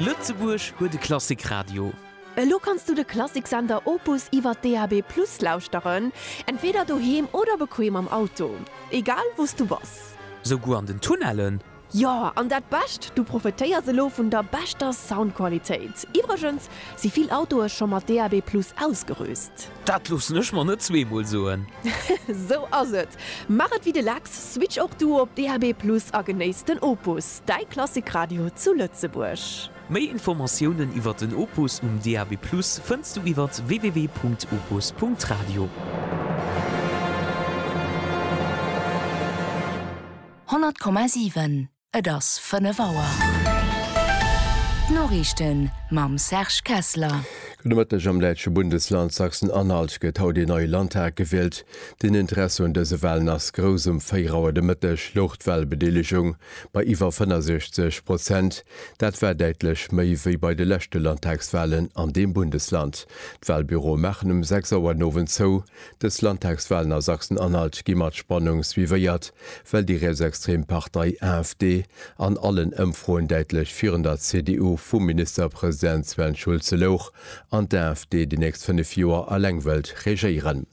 Lëtzebuerg huet e Klassikradio. Elo kanns du de Klassiksender Opus iwwer DAB+ lauschteren, entweeder doheem oder bequem am Auto. Egal wou s du bass. Souguer an den Tunnellen? Jo, an dat Bescht, du profetéiers elo vun der beschter Soundqualitéit. Iwwregens si vill Autoe scho mat DAB+ ausgerüst. Dat loossen ech mer net zweemol soen. Sou ass et. Maach et wéi de Lex, switch och du op DAB+ a genéiss den Opus, däi Klassikradio zu Lëtzebuerg. Méi Informatiounen iwwert den Opus um DAB+ fënns du iwwer www.opus.radio. 100,7 Et ass 5 Auer. D'Noriichten mam Serge Kessler. Gudde Mëtteg, Am däitsche Bundesland Sachsen-Anhalt gëtt haut een neie Landtag gewielt. Den Interesse un dëse Walen ass grouss. Um 4 Auer de Mëtteg louch d'Walbedeelegung bei iwwer 65 Prozent. Dat war däitlech méi wéi bei de leschte Landtagswalen an deem Bundesland. D'Walbüroe maachen um 6 Auer den Owend zou. Dës Landtagswalen a Sachsen-Anhalt gi mat Spannung suivéiert, well déi rietsextrem Partei AfD an allen Ëmfroen däitlech virun der CDU vum Ministerpresident Sven Schulze louch an d'AfD déi nächst 5 Joer eleng wëllt regéieren.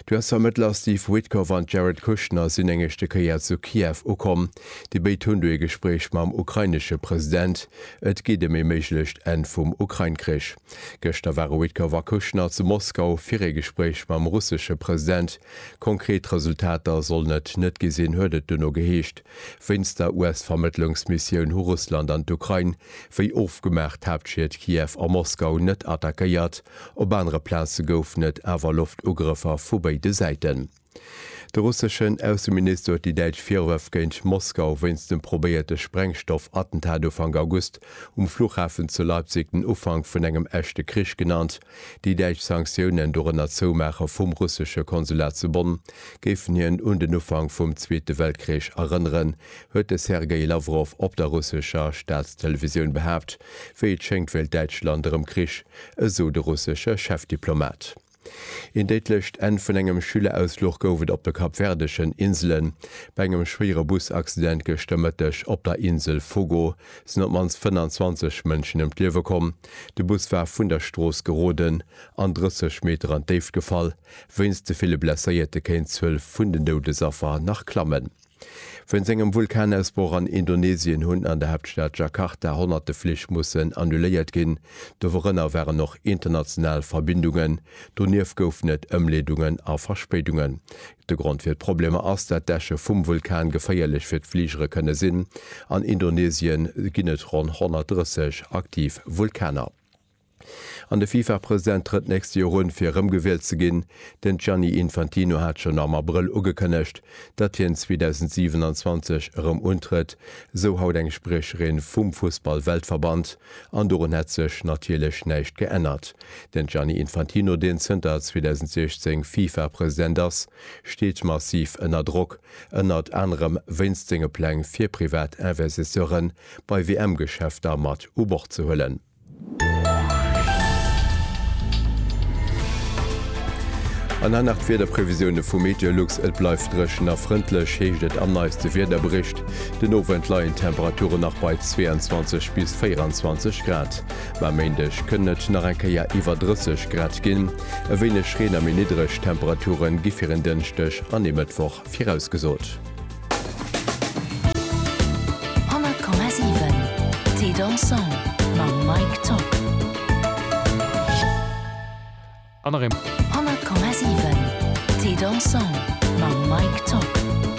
D'US-Vermëttler Steve Witkoff an Jared Kushner sinn eng éischte Kéier zu Kiew ukomm. Déi béid hunn do ee Gespréich mam ukrainesche President. Et geet ëm ee méiglecht Enn vum Ukrain-Krich. Gëschter ware Witkoff a Kushner zu Moskau fir ee Gespréich mam russesche President. Konkret Resultater sollen et net gi sinn, huet et duerno geheescht. Wéinst der US-Vermëttlungsmissioun hu Russland an d'Ukrain, wéi ofgemaach, d'Haaptschied Kiew a Moskau net attackéiert. Op anere Plaze goufen et awer Loftugrëffer vu béide Säiten. De russeschen Ausseminister huet déi däitsch Virwërf géint Moskau wéinst dem probéierte Sprengstoff-Attentat Ufank August um Fluchhafen zu Leipzig den Ufank vun engem echte Krich genannt. Déi däitsch Sanktiounen, dorënner d'Zoumaache vum russesche Konsulat zu Bonn, géifen hien un den Ufank vum Zweete Weltkrich erënneren, huet de Sergei Lawrow op der russescher Staatstelevisioun behaapt. Wéi et schéngt wéilt Däitschland erëm Krich, esou de russesche Chefdiplomat. Een déidlecht Enn vun engem Schülerausfluch gouf et op de kapverdeschen Inselen. Bei engem schwéiere Busaccident gëschter Mëtteg op der Insel Fogo sinn op d'mannst 25 Mënschen ëm d'Liewe komm. De Bus war vun der Strooss geroden an 30 Meter an d'Déift gefall. Wéinst de ville Blesséierte kéint d'Zuel vun den Doudesaffer nach klammen. Wéinst engem Vulkanausbroch an Indonesien hunn an der Haaptstad Jakarta honnerte Flich mussen annuléiert ginn. Dorënner waren och international Verbindungen. Donieft goufen et Ëmleedungen a Verspéidungen. De Grond fir d'Problemer ass, dat d'Äsche vum Vulkan geféierlech fir d'Fligere kënne sinn. An Indonesien ginn et ronn 130 aktiv Vulkaner. An de FIFA-President trëtt d'nächst Joer un, fir erëmgewielt ze ginn. Den Gianni Infantino hat schonn am Abrëll ugekënnegt, datt hien 2027 erëm untrëtt, esou haut eng Spriecherin vum Fussball-Weltverband. An dorun hätt sech natierlech näischt geännert. Den Gianni Infantino, deen zënter 2016 FIFA-President ass, steet massiv ënner Drock, ënnert anerem wéinst senge Pläng, fir privat Investisseuren bei WM-Geschäfter mat u Bord ze huelen. An dann nach d'Wiederprevisioune vu Meteolux, Et bleift dréchen a frëndlech, heescht et am neiste Wiederbericht. Den Owend leien d'Temperature nach bei 22 bis 24 Grad, mä e Méindeg kënnen et nach eng Kéier iwwer 30 Grad ginn. E wéineg Reen a méi niddreg Temperature gi fir en Dënschdeg an ee Mëttwoch. Virausgesot.